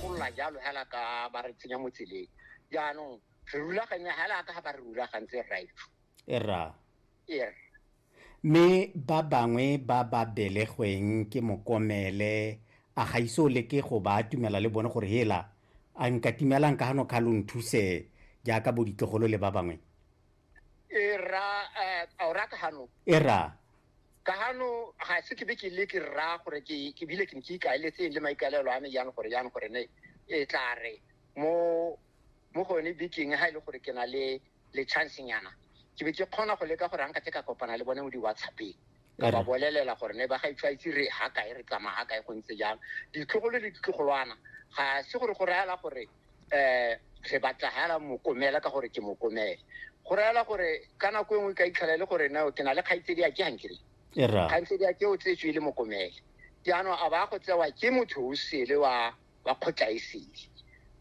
golola jalo hela ka ba re tsenya mo tseleng jaanong re rulaganya hela ka ga ba re rulagantse right era er mme ba bangwe ba ba belegweng ke mokomele a ga ise o leke go ba atumela le bone gore hela a nka timelang ka gano kga lo nthuse jaaka bo ditlogolo le ba bangwe era eh, a o rata gano era ka gano ga se ke be ke le ke rra gore ke ke bile ke ne ke ikaeletseng le maikaelelo a me jang gore jang gore ne e tla re mo mo gone bekeng ga e le gore ke na le le chance nyana ke be ke kgona go leka gore anka te ka kopana le bone mo di-whatsappeng ka ba bolelela gore ne ba ga itshwaitse re ga kae re tsamaya ga kae go ntse jang ditlogolo le ditlogolwana ga se gore go reela gore um re batla hela mokomela ka gore ke mokomele go reela gore ka nako e nngwe ka itlhela e le gore nao ke na le kgaitsedi a ke gankere e ra kgaitsedi a ke o tsetswe e le mokomele jaanong a ba go tsewa ke motho o sele wa wa kgotla e sele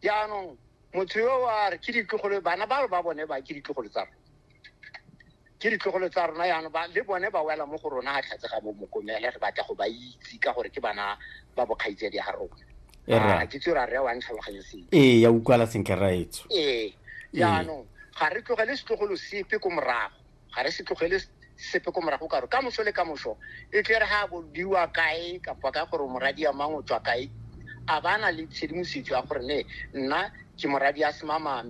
jaanong motho yo wa re ke ditlogolo bana ba ba bone ba ke ditlogolo tsa rona ke ditlogolo tsa rona yana ba le bone ba wela mo go rona ga tlhatse ga bomokomele re batla go ba itse ka gore ke bana ba bokgaitsedi ga rona eh, ah, ke tse ra re wa ntlhaloganye seng ee ya utlwala sentle raetso ee jaanong ga re tlogele setlogolo sepe ko morago ga re se tlogele sepe ko morago ka gore ka moso le ka moso e tle re ga bodiwa kae kapa ka gore moradi ya mang o tswa kae a ba na le tshedimosetso ya gore ne nna ke moradi ya semama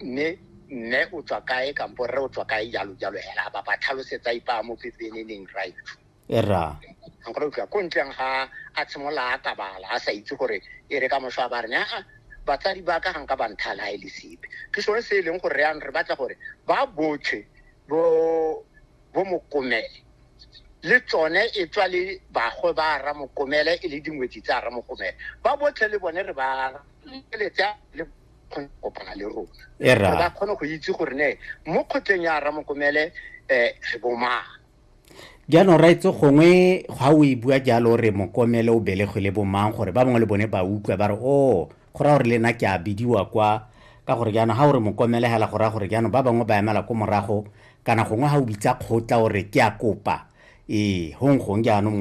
mme mme o tswa kae kampo rre o tswa kae jalo jalo hela ba ba tlhalosetsa ipa mo pepeneneng right era nkore utlwa ko ntleng ga a tshimola a kabala a sa itse gore e re ka mosho a ba re aa batsadi ba ka ganka ba nthala e le sepe ke sone se e leng gore yang re batla gore ba botlhe bo bo mokomele le tsone e tswa le bagwe ba ra mokomele e le dingwetsi tsa ra mokomele ba botlhe le bone re ba letsa le kgone go kopana le rona E ra. ba kgone go itse gore ne mo kgotleng ya ramokomele um re bomang jaanong ra itse gongwe ga o e bua jalo re mokomele o belegwe le bomang gore ba bangwe le bone ba utlwa ba re o go raya gore le nna ke a bidiwa kwa ka gore jaanong ga o re mokomele hela go raya gore jaanong ba bangwe ba emela ko morago kana gongwe ga o bitsa kgotla o re ke a kopa ee gong gong jaanong